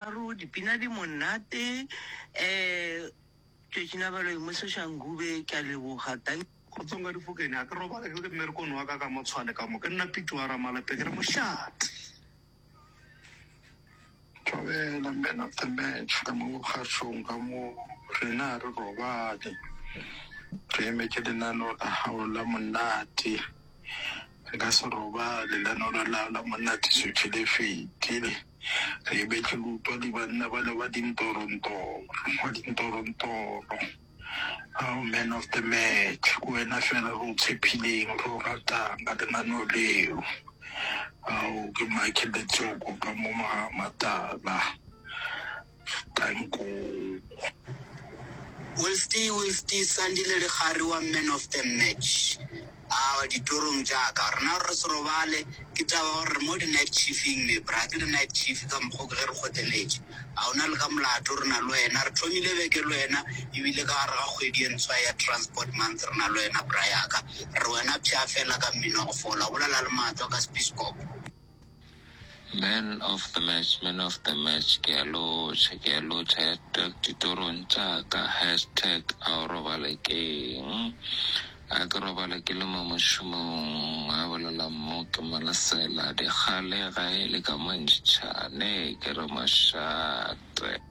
Tharo, dipina di monate ehh. Tšatši la balo emoseša Ngube ke a leboga thank. Kgotsong ka Difokeng a ke robala ke le mmerekong wa ka ka mo tshwane ka mo ke nna Pete wa Ramalape ke re mošate. Dumela man of the match ka mo kgašong ka mo rena ha re robale re emetše lenaneo la hao la monate Re ka se robale, lenaneo la la monna Tisoche le fetile. Re lebetše go utwa di banna bale ba dintorontoro, wa dintorontoro. Ao man of the match, ke wena fela re o tshepileng, re o ratang ka lenaneo leo. Ao ke Michael Letsoko ka mo Magamatala. Wilsty, Wilsty, Sandile Lekgari wa Man of the Match. Aowa, ditorong tša ka. Rena re se robale, ke taba ya gore re mo di-night chief-ing me. Bra, ke di-night chief ka mokgwa o ke ge re kgoteletše. A o na le ka molato re na le wena? Re thomile beke le wena ebile ka gare ga kgwedi e ntshwa ya Transport Month re na le wena bra ya ka. Re re wena pshaa feela ka mmino wa go fola, bolela le matswa ka sepiskopo. Man of the match, man of the match, ke a lotšha, ke a lotšha, hashtag ditorong tša ka, hashtag a o robale keng, a ke robale ke le mo mošomong, a bolela mo ke mo lesela, dikgale ga e le ka mo ntšha, ne ke re mošate.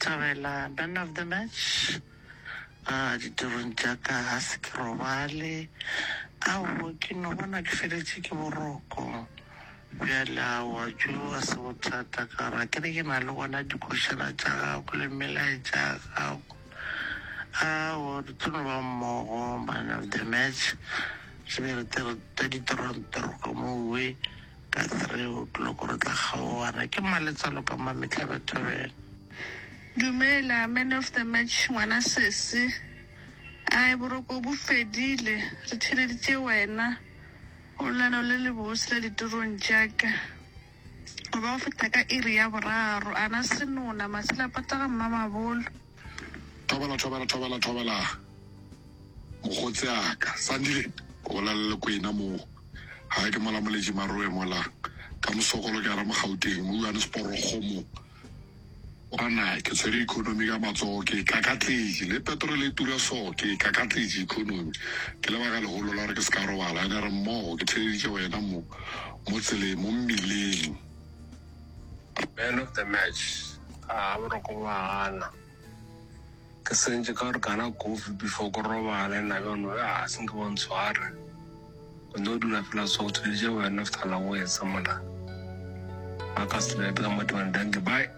Thabela, Man of the Match, A ditirong tša ka ga se ke robale, aowa ke no bona ke feletše ke boroko bjale, aowa tšo ga se bothata ka gore ga ke re ke na le gona dikošana tša gago le melaetša ya gago, aowa re tlo no ba mmogo Man of the Match, re be re tle re tla ditrontoroka mo we Ka gare re utlwile gore tla kgaogana ke mang le tsalo ka mma mehla ba thobela. Dumela man of the match ngwana sesi. Ai boroko bo fedile re theeleditše wena o lelano le le bose la ditirong tša ka. Go ba go feta ka iri ya boraro ana senona masila pata ga mmamabolo. Thobela, thobela, thobela, thobela, mokgotse a ka. Sandile, o bolela le kwena mo. Ga ke mola moletše maroe mola. Ka mosokolo ke ara mo Gauteng, mo Johannesborogo mo. Kwana ke tshwere economy ka matsogo, ke e kakatletše. Le petrol e tura so, ke e kakatletše economy. Ke lebaka legolo la gore ke se ka robala. Ene re mmogo, ke theeleditše wena mo, mo tseleng, mo mmileng. Man of the match. Ah, boroko ba gana. Ke sentše ka gore kana kofi before ko robale na bjano ya ah, senke ba ntshware. O no dula fela so go thulitše man of the la go etsa mola. Ba ka se bebe ka mo tebang danke bye.